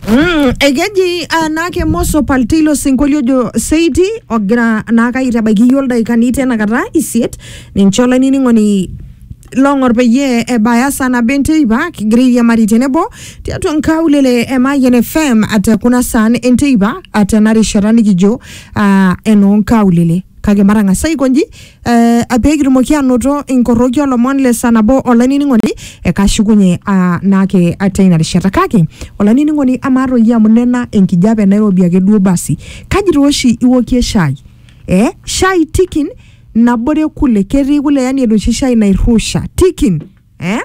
Mm, ekeji uh, naake moso paltilo sinkolio jo seiti ogira naake aitabaiki iyiook ildaikani tenakata isiet ninche olainining'oni long'or peyie ebaya saa nabo enteipa kigira airiamari tenebo tiatua nkaulele e Mayian FM ate kuna saan enteipa ate ena rishata nikijo uh, enoo nkaulele kake matang'asa aikonji eh, peekitumoki anoto inkoroki olomon le saa nabo olainining'oni ekashukunye ah, naake atia ina rishata kake olainining'oni amaa toi iyie amu nena enkijape nairobi ake duo basi kaji toi oshi iwokie shai eh, shai tikin nabore kule ketii kule yani enoshi shai nairrusha tikin eh?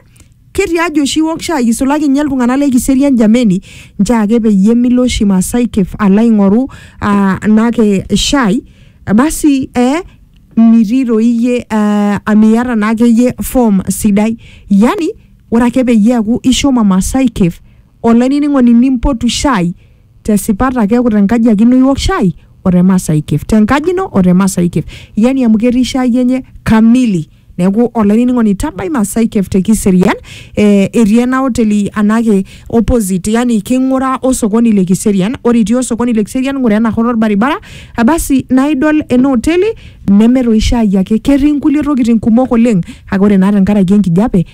ketii ajo oshi iwok shai isulaki ninye iltung'anak le kiserian jameni nchoo ake peyie milo oshi Masai Cave alo aing'oru ah, naake shai basi eh, mitii toi iyie eh, amiata naake iyie form sidai yani ore ake peyie eaku ishomo Masai Cave Olainining'oni nimpotu shaai te sipata keeku te nkaji ake ino iwok shaai o te Maasai Cave. Te nkaji ino o te Maasai Cave. Yani amu ketii shaai enye kamili. Neeku olainining'oni tabai Maasai Cave te Kiserian etii ena oteli anake opposite yani king'ura o sokoni le Kiserian. Ore itii osokoni le Kiserian ng'ura ena shoto olbaribara basi naa idol ena oteli neme toi shaai ake ketii nkulie tokiting kumok oleng kake ore naa tenkaraki enkijape